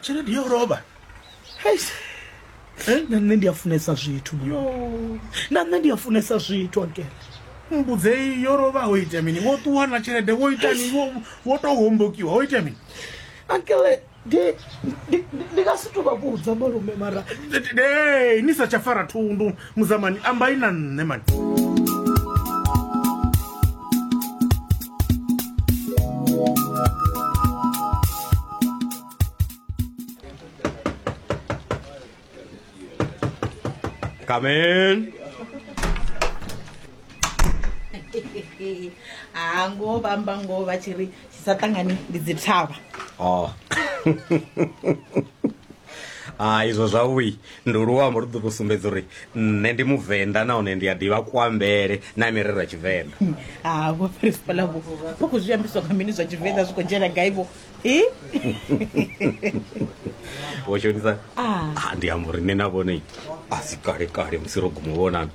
tshelede yo lovha eh, na nṋe ndi a funesa zwithu na nṋe ndi a funesa zwithu akele mbudzei yo lovha ho ita mini wo ṱuwa na tshelede wo ita ni wo tou hombokiwa ho ita mini akele ndi nga si tou vha vhudza malume mara ni sa tsha fara thundu Muzamani ambai na nṋe mani. Come in. ha ngoho vha amba ngoho vha tshi ri tshi sa ṱangani ndi dzi thavha Oh. ah, izwo zwavhui. Ndi luambo lu ḓo tou sumbedza uri nṋe ndi muvenḓa nahone ndi a ḓivha kuambele na mirero ya tshivenḓa ha vho principal vho vho khou zwi ambiswa nga mini zwa tshivenḓa zwi khou dzhena gai vho i vho shonisa Ah. Ah, ndi amba uri nṋe na vhone a si kale kale musi ro guma u vhonana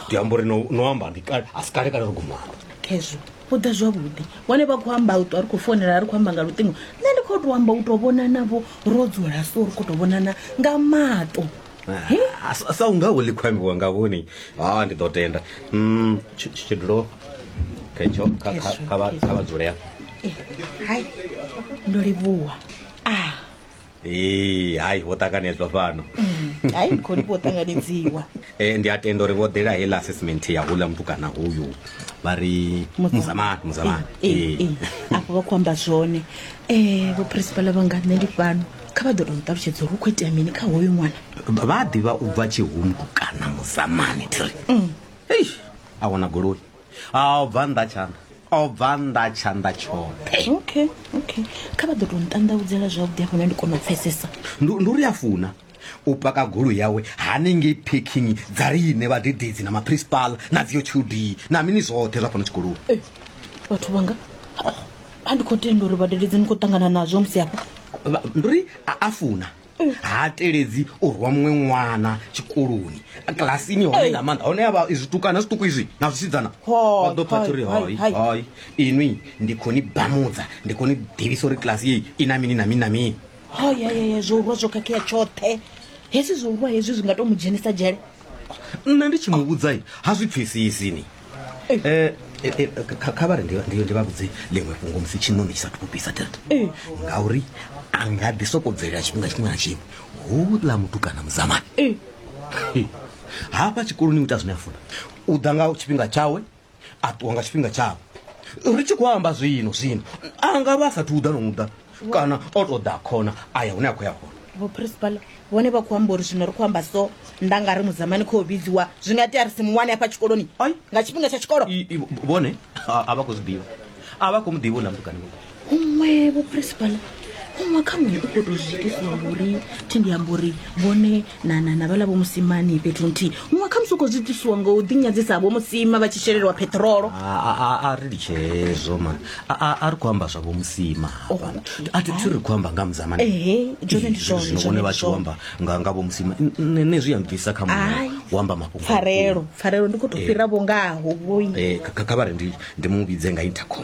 ndi amba uri no no amba ndi kale a si kale kale ri gumana khezwo u ḓa zwavhuḓi wane vha khou amba u ṱwa ri khou founela ri khou amba nga luṱingo nṋe ndi khou tou amba u tou vhona navho ro dzula so ri khou tou vhonana nga maṱo He? Ah, sa- sa unga wo ḽi khou ambiwa nga vhoni ha ndi ḓo tenda Mm, tshi- tshi- tshidulo khetsho kha- kha- Khetsho, kha vha- khetsho. kha vha dzule hafha Eh, hai ndo livhuwa a ee hai vho ṱanganedzwa fhano mm, hai khoni vho ṱanganedziwa e ndi a tenda uri vho ḓela heila assessment ya hula mutukana hoyu vha ri muzamani muzamani eh, eh, afho vha khou amba zwone um vho principala vhanga nṋe ndi fhano kha vha ḓo to nṱalutshedza uri u khou itea mini kha hoyu ṅwana vha ḓivha u bva tshihumbu kana muzamani tiri mm. a wana goloi a o bva nnḓa tshanḓa o bva nnḓa tshanḓa tshoṱhe okay okay kha vha ḓo tou nṱanḓavudzela zwavhuḓi afho na ndi kona u pfesesa ndi ndi uri a funa u paka golo yawe hanengei parking dza riṋe vhadededzi na maprincipal na dziyo qd na mini zwoṱhe zwa fhano tshikoloni Eh, vhathu vhanga a ndi khou tenda uri vhadededzi ni khou ṱangana nazwo musi afha Vha- ndi uri a- a funa ha teledzi u rwa muṅwe ṅwana tshikoloni kilasini hone nga maanḓa hone yavha zwitukana zwiṱuku izwi na zwisidzana vha ḓo pfha uri hai hai inwi ndi khou ni bamudza ndi khou ni ḓivhisa uri kilasi yeyi i na mini na mini na mini hayayaya zwo urwa zwo khakhea tshoṱhe hezwi zwo urwa hezwi zwi nga to mu dzhenisa dzhele nṋe ndi tshi mu vhudza ha zwi pfesesi ni eh, eh, eh, kha vha ri ndi vha vhudze ḽiṅwe fhungo musi tshiṋoni tshi sa thupisa tata ngauri a nga ḓi soko bvelela tshifhinga tshiṅwe na tshiṅwe houḽa muthu kana muzamani hafha tshikoloni u ita zwine a funa u ḓa nga tshifhinga tshawe a ṱuwa nga tshifhinga tshavho ri tshi khou amba zwino zwino a nga vha a sathu uḓa no uḓa kana o tou ḓa khona a ya hune a khou ya hone vho principal vhone vha khou amba uri zwino ri khou amba so nda nga ri mudzamani khou vhidziwa zwi nga tea ri si muwane hafha tshikoloni nga tshifhinga tsha tshikolo vhone a vha khou zwi ḓivha a vha khou mu ḓivha u na mutukani huṅwe vho principal huṅwe kha muṅwe u khou tou zwi itisa uri thi ndi amba uri vhone na na na vhala vho musimani fhethu nthihi huṅwe kha musi u khou zwi itisiwa ngo u ḓinyadzisa vho musima vha tshi shelelwa peṱirolo A- a- a- a ri litshe hezwo mani A- a a ri khou amba zwavho musima hafhana a thi thi ri khou amba nga muzamani Ehe, zwone ndi zwone, zwino zwone vhone ndi vha tshi zwone. amba nga nga vho musima N- n- nṋe zwi ya mbvisa kha Ai, muṅwe u amba mafhungo a pfarelo pfarelo ndi khou tou fhira vho ngaho vhoi vhukuma. Eh, kha- kha- kha vha ri ndi ndi mu vhidze nga intercom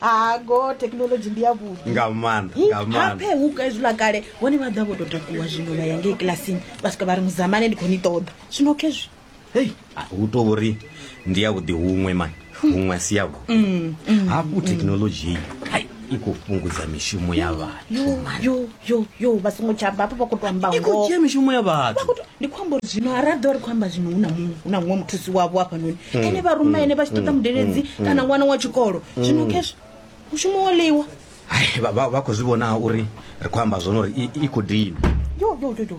ha go thekhinolodzhi ndi ya vhuḓi nga maanḓa nga maanḓa haphe huka hezwiḽa kale vhone vha ḓa vho tou takuwa zwino vha ya ngei kilasini vha swika vha ri muzamane ndi khou ni ṱoḓa zwino khezwi hei a, hu to uri ndi ya vhuḓi huṅwe mani huṅwe a si ya vhuḓi Mm, mm, hafhu thekhinolodzhi iyi ai, i khou fhungudza mishumo ya vhathu yo yo yo yo vha songo tsha bva hafho vha khou tou amba i khou ngoho dzhia mishumo ya vhathu ndi khou amba uri zwino ha ra ḓo ri khou amba zwino hu na muṅwe hu na muṅwe muthusi wavho hafhanoni Mm. ene vha ruma ene vha tshi ṱoḓa Mm. mudeledzi Mm. Mm. kana ṅwana wa tshikolo zwino Mm. khezwo mushumo wo ḽiwa Hai, vha vha- vha khou zwi vhona uri ri khou amba zwone uri i- i khou dina yo yo yo yo